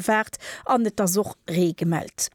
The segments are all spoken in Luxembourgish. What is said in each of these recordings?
Waart an et ass och Ree gemellt.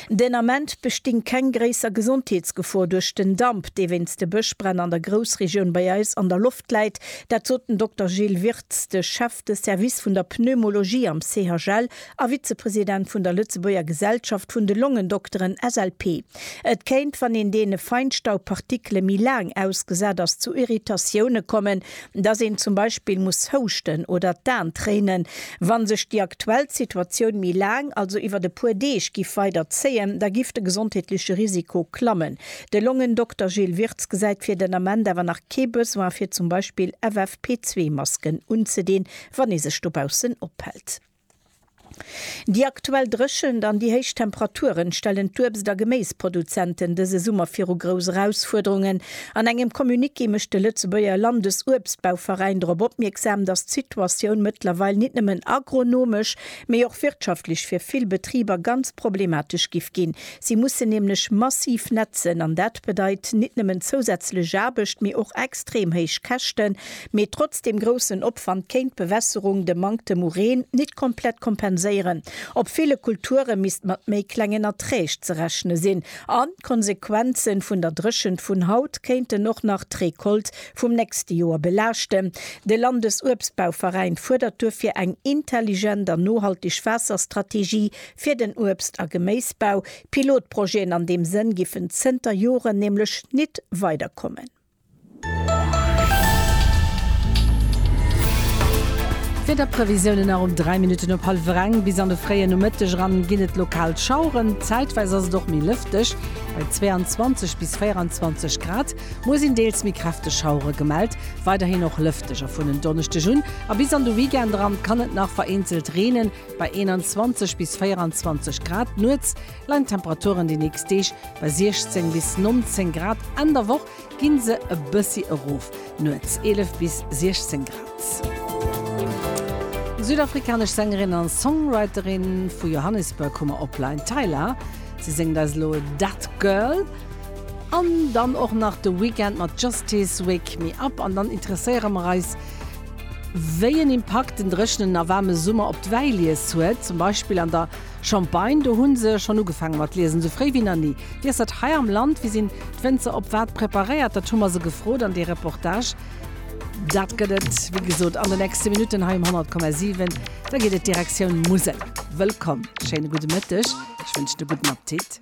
Den Ament besting keng gréisser Gesondheetsgefor duerch den Damp, dee wéinst de Bëschbränn an der Groussregioun bei eis an der Loft läit. Dat sot den Dokter Gilles Wirtz, de Chef de Service vun der Pneumologie am CHL a Vizepresident vun der Lëtzebuerger Gesellschaft vun de Longendokteren, SLP. Et kéint, wann een deene Feinstaubpartikele méi laang ausgesat ass, zu Irritatioune kommen. dass een zum Beispill muss houschten oder d'An tréinen. Wann sech déi aktuell Situatioun méi laang, also iwwert e puer Deeg, giff weider zéien, da giff de gesondheetleche Risiko klammen. De Longendokter Gilles Wirtz gesäit fir den Ament awer nach kee Besoin fir zum Beispill FFP2 Masken unzedeen, wann ee sech dobaussen ophält. Déi aktuell Dréchent an déi héich Temperaturen stellen d'Uebst a Geméisproduzenten dëse Summer viru grouss Erausfuerderungen. An engem Communiqué mécht de Lëtzebuerger Landesuebstbauveräin drop opmierksam, datt d'Situatioun mëttlerweil nit nëmmen agronomesch, mee och wirtschaftlech fir vill Betriber ganz problematesch giff ginn. Si mussen nämlech massiv nätzen an dat bedeit nit nëmmen zousätzlech Aarbecht, mee och extrem héich Käschten. Mee trotz dem groussen Opwand kéint d'Bewässerung de Manktem u Reen nit komplett kompenséieren. Op ville Kulture misst mat méi klengen Erträg ze rechne sinn an d'Konsequenze vun der Dréchent vun haut kéinten och nach d'Recolte vum nächste Joer belaaschten. De Landesuebstbauveräin fuerdert duerfir eng intelligent an nohalteg Waasserstrategie fir den Uebst a Geméisbau. Pilotprojeten an deem Sënn giffen zënter Joren nämlech nit weiderkommen. Wiederprevisiounen nach um 3 Minutten op hallwer eng. Bis an de fréien Nomëtteg eran ginn et lokal Schaueren, zäitweis ass et och méi lëfteg, bei 22 bis 24 Grad. Muer sinn deels méi kräfteg Schauere gemellt, weiderhin och lëfteg. A vun en Donneschdeg un a bis an de Weekend eran kann et nach vereenzelt reenen, bei 21 bis 24 Grad. Nuets leien d'Temperaturen déi nächst Deeg bei 16 bis 19 Grad, Enn der Woch gi se e bëssi erof, nuets 11 bis 16 Grad. Südafrikanesch Sängerin a Songwriterin vu Johannesburg hu mer op Line, Tyla. Si séngt eis elo Dat Girl an dann och nach de Weeknd mat Justice, Wake Me Up. An dann interesséiere mer eis, wéi en Impakt den dréchenen a waarme Summer op d'Wäilies huet, zum Beispill an der Champagne, do hunn se schonn ugefaange mat liesen, esou fréi wéi nach ni. Wéi ass dat hei am Land? Wéi sinn d'Wénzer op wat preparéiert? Dat hu mer se gefrot an dee Reportage, dat gëtt et wéi gesot an de nächste Minutten hei um 100,7. Da geet et Direktioun Musel. Wëllkomm, schéine gudde Mëtteg, ech wënschen e gudden Appetit.